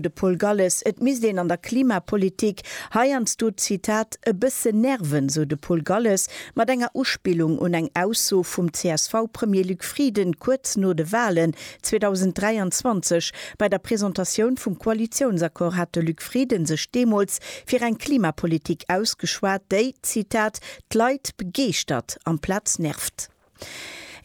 De Paul Galles, Et misst een an der Klimapolitik heiansdo, Zitat, e bësse nerven, sou de Paul Galles mat enger Uspillung un eng Ausso vum CSV-Premier Luc Frieden kuerz no de Walen 2023. Bei der Presentatioun vum Koalitiounsaccord hat de Luc Frieden sech deemools fir eng Klimapolitik ausgeschwat, déi, Zitat, d'Leit begeeschtert amplaz nervt.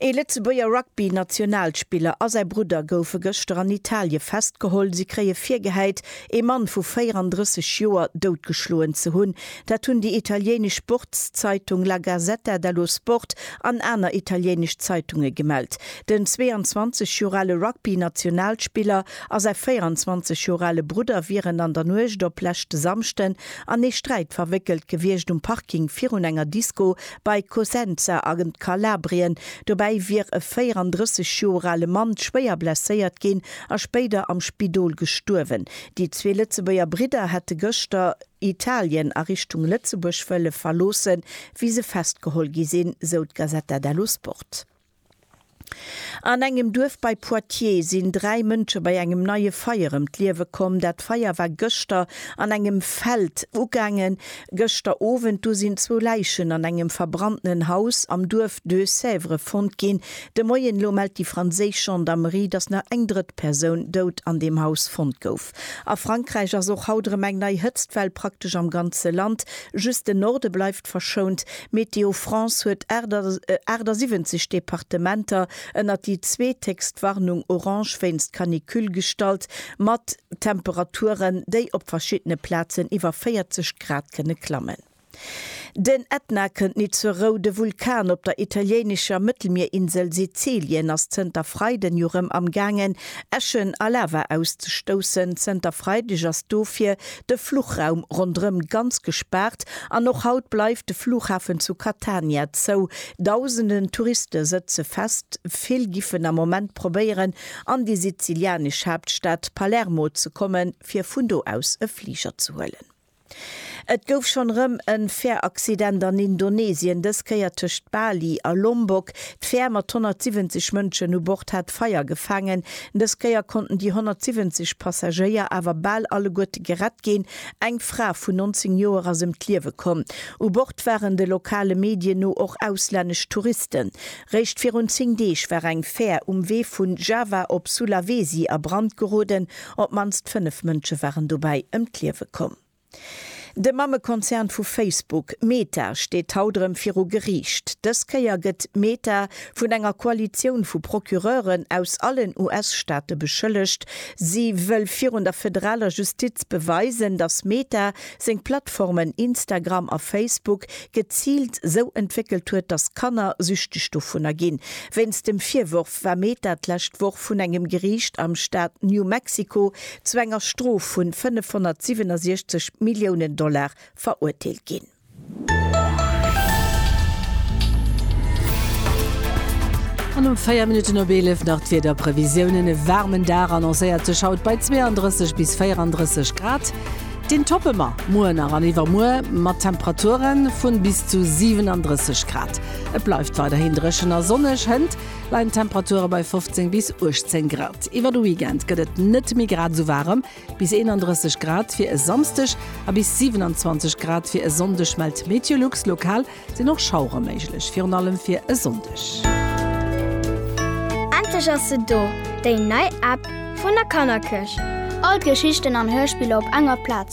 Ee Lëtzebuerger Rugby-Nationalspiller a säi Brudder goufe gëschter an Italie festgeholl. Si kréie virgehäit, ee Mann vu 34 Joer doutgeschloen ze hunn. Dat hunn déi italienesch Sportszeitung La Gazzetta dello Sport an aner italienesch Zeitunge gemellt. Den 22 Joer ale Rugby-Nationalspiller a säi 24 Joer ale Brudder wieren an der Nuecht op leschte Samschden an ee Sträit verwéckelt gewiescht um Parking virun enger Disko Bei Cosenza a Kalabrien dobäi wier e 34 Joer ale Mann schwéier blesséiert ginn a spéider am Spidol gestuerwen. Déi zwee Lëtzebuerger Bridder hätte gëschter Italien a Richtung Lëtzebuerg wëlle verloossen, wéi se festgeholl gi sinn, sou d'Gazzetta dello Sport. An engem Duerf bei Poitiers sinn dräi Mënsche bei engem neie Feier ëm d'Liewe komm. Dat Feier war gëschter an engem Feld ugaangen. Gëschter Owend du sinn zwou Läichen an engem verbrannten Haus am Duerf Deux-Sèvres fonnt ginn. De Moien elo mellt déi franséisch Gendarmerie, datt nach eng drëtt Persoun dout an deem Haus fonnt gouf. A Frankräich ass och haut erëm eng nei Hëtztwell praktesch am ganze Land. Just den Norde bleift. Stad verschount. Météo France huet 78 Departementer ënnert déi zweethéchst Warnung orange wéinst Canicule gestallt, mat Temperaturen, déi op verschiddene Plazen iwwer 40 Grad kënne klammen. Den Ätna kënnt nit zur Rou. De Vulkan op der italiéinescher Mëttelmierinsel Sizilien ass zënter Freiden jo rëm am gaangen Äschen a Lava auszestoussen. Zënter Freideg ass dofir de Fluchraum ronderëm ganz gespaart an och haut bleift de Flughafen zu Catania zou. Dausenden Touriste sëtze fest, vill giffen am Moment probéieren an déi sizilianesch Haaptstad Palermo ze kommen, fir vun do aus e Fliger ze huelen. Et gouf schonn erëm e Fähraccident an Indonesien, dës Kéier tëscht Bali a Lombok. D'Fär mat 170 Mënschen u Bord hat Feier gefaangen. Dës Kéier konnten déi 170 Passagéier awer bal alleguerte gerett ginn. Eng Fra vun 19 Joer ass ëm d'Liewe komm. U Bord waren de lokale Medien no och auslännesch Touristen. Réischt virun 10 Deeg war eng Fär um Wee vu Java op Sulawesi a Brand geroden. Op d'mannst 5 Mënsche waren dobäi ëm d'Liewe komm. De Mammekonzern vu Facebook, Meta, steet haut erëm viru Geriicht. Dës Kéier gëtt Meta vun enger Koalitioun vu Procureuren aus allen US-Staate beschëllegt. Si wëll virun der federaler Justiz beweisen, datt Meta seng Plattformen Instagram a Facebook geziilt sou entwéckelt huet, datt Kanner süchteg dovunner ginn. Wéinst dem Virworf, war Meta d'lescht Woch vun engem Geriicht am Staat New Mexico zu enger Strof vun 567 Milliounen Dollar verurteelt ginn. An um 4 Minutten op 11 nach d'Wiederprevisiounen, E waarmen Dag annoncéiert sech haut bei 32 bis 34 Grad. Deen toppe mer muer nach an iwwermuer mat Temperature vun bis zu 37 Grad. Et bleift weiderhin dréchen a sonneg. Hënt leien d'Temperature bei 15 bis 18 Grad. Iwwer de Weekend gëtt et net méi grad esou waarem, bis 31 Grad fir e Samsdeg a bis 27 Grad fir e Sonndeg mellt d'Meteolux. Lokal sinn och Schauere méiglech, virun allem fir e Sonndeg. Endlech ass se do, déi nei App vun der Kannerkëscht! All d'Geschichten an Hörspiller op enger Plaz.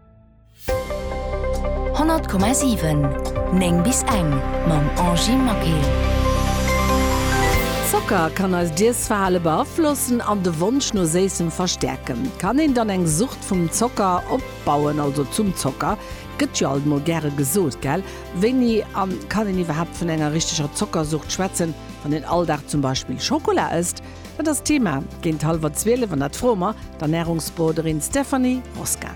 100,7 9 bis eng mam Angie Maquet. Zocker kann eist Iessverhale beaflossen an de Wonsch no Séissem verstäerken. Kann een dann eng Sucht vum Zocker opbauen, also zum Zocker? Gëtt jo alt mol gäre gesot, gell? Wéini a kann een iwwerhaapt vun enger richteger Zockersucht schwätzen, wann een all Dag zum Beispill Schokola ësst? Dat ass d'Thema géint hallwer zwielef an dat froe mer d'Ernärungsberoderin Stéphanie Roskin.